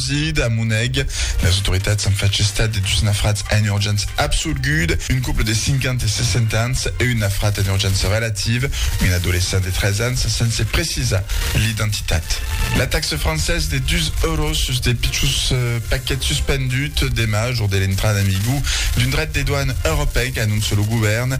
Sid, a Moneg, las autoritats an fach estat de dus nafrats en urgéncia absolguda, un couple de 50 e 60 ans e un nafrat en urgéncia relativa, un adolescent de 13 ans, sense precisar l'identitat. La taxa francesa de dus euros sus de pichons paquets suspendut demà, jour de l'entrada en vigor d'un dret de doan europèc, anóncia lo govèrn.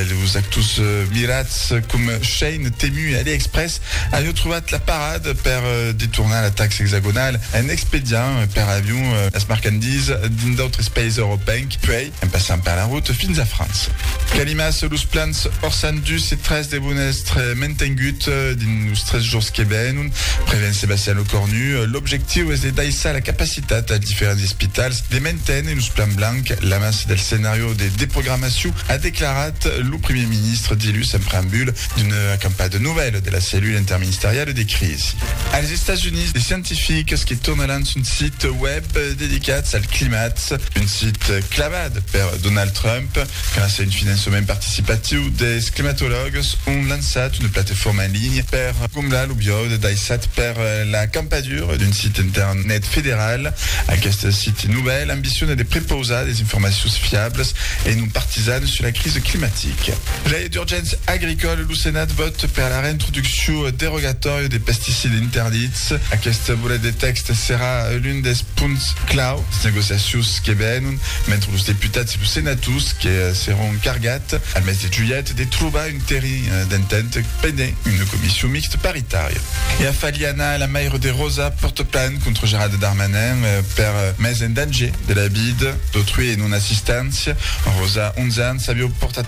Los actors mirats coma shein temu e AliExpress Avion trobat la parada per detornar la taxa exagonala en expediant per avion las marchandisas dins d'autres païses europencs, puèi en passant per la rota fins a França. Calimas, los plans Orsan 2 e 3 devon èstre mentengut dins los tres jorns que venon, prevén Sebastian Lecornu. L'objectiu es de daissar la capacitat als diferents espitals de menténer los plans blancs l'amassa del scenàrio de deprogramacion, a declarat lo primièr ministre dilhus en preambula D'una campada de novèla de la cellula interministeriala de crisi als Estats Units de scientifics que tornaràn son site web dedicats al climat, un site clavat per Donald Trump gràcia a un finançament participatiu dels climatològs ont lançat una plateforma en linha per comblar lo viòde daissat per la campadura d'un site internet federal. Aqueste site novèl ambiciona de prepausar des informacions fiablas e non partisanas sus la crisi climatica. D'urgéncia agricòla, lo Senat vòt per la reintroduccion derogatòria de pesticids interdits. Aqueste bolet de tèxt serà l'un dels punts clau dins negociacions que venon, mentre los deputats e los senators que seràn cargats, al mes de julhet, de trobar un terrin d'entent pendent una comission mixte paritària. E a Faliana, la maire de Rosa pòrta plan contra Gerald Darmanin per mes en danger de la vida d'autrui e non-assisténcia. Rosa, 11 ans, aviá portat